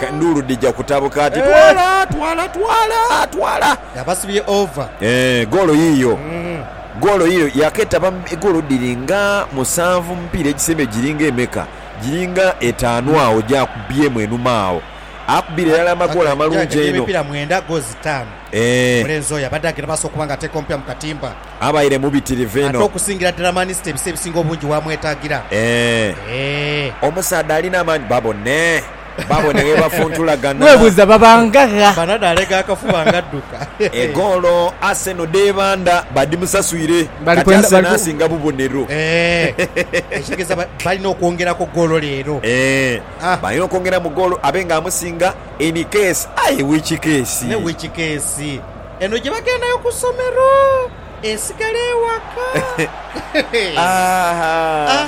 Endhulu dhija kutabuka ati, Twala! Twala! Twala! Twala! Yabasibye ova. Ee, goolo yiiyo. Goolo yiiyo. Yaaketaba mu goolo dhiri nga musanvu mu mupiira egisembayo. Giri nga emeka? Giri nga etaanu agho gy'akubyemu enhuma agho. Akubye irala amagoolo amalungi einho. Atekeibwa emipiira mwenda, goolo itaanu. Ee. Omulenzi oyo abadde aghera maaso okuba nga ateeka omupira mu katimba. Abaire mubitirivu inho. Ate okusingira ddala Manisita ebiseera ebisinga obungi waamwetaagira. Ee. Ee. Omusaadha alina amaani babone. Baabo ni ghebafuntulagana. Webuuza babanga gha? Banadha alega akafuba nga adduka. Egoolo Arsenal dh'ebandha badhimusaswire kati Arsenal asinga bubonero. Eehh ekitegeeza balina okwongeraku goolo leero. Eehh balina okwongera mu goolo abe nga amusinga in case aye which case? Ne which case? Eno gye bagendayo ku somero esigala ewaka. Aahh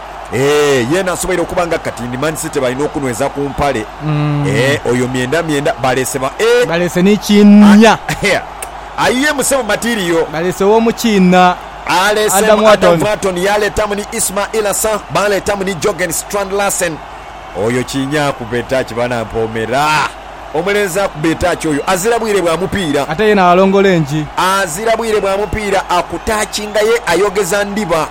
Eeh yeena asoboire okuba nga kati ndi man city balina okunweza ku mpale eeh oyo myenda myenda baleese ba eeh. Baleese ni kiinha. Ayiye mu sebo material. Baleese womu kiinha Adam Wharton. Wharton yaleetamu ni Ismail Assar baleetamu ni Jorgen Strand Larsen. Oyo kiinha akuba etaaki bana mpoomera. Omulenzi akuba etaaki oyo azira bwire bwa mupiira. Ate yeena alongola engi. Azira bwire bwa mupiira akutaakinga ye ayogeza ndiba.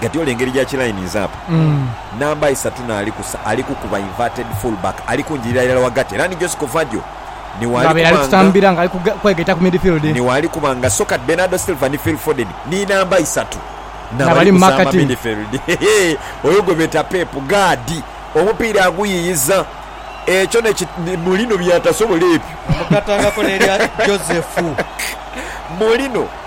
Guardiola engeri ja kilininze apo namba isatu n'ali kusa ali kukuba inverted fullback ali kunjirira irala ghagati era ni Jose Covadio ni w'ali Ng'abaire ali kuba nga kutambira ng'ali kuge- kwegaita ku midfield. ni w'ali kuba nga so kati Bernardo Silva ni Phil Foden ni namba isatu n'abali N'abali mu kusa marka ama team. midfield. Hehe, oyo gwe beeta Pep gaadi omupiira aguyiyiza ekyo ne ki ni Mourinho by'atasobola ebyo. Nga mugatangako n'erya Joseph. Mourinho.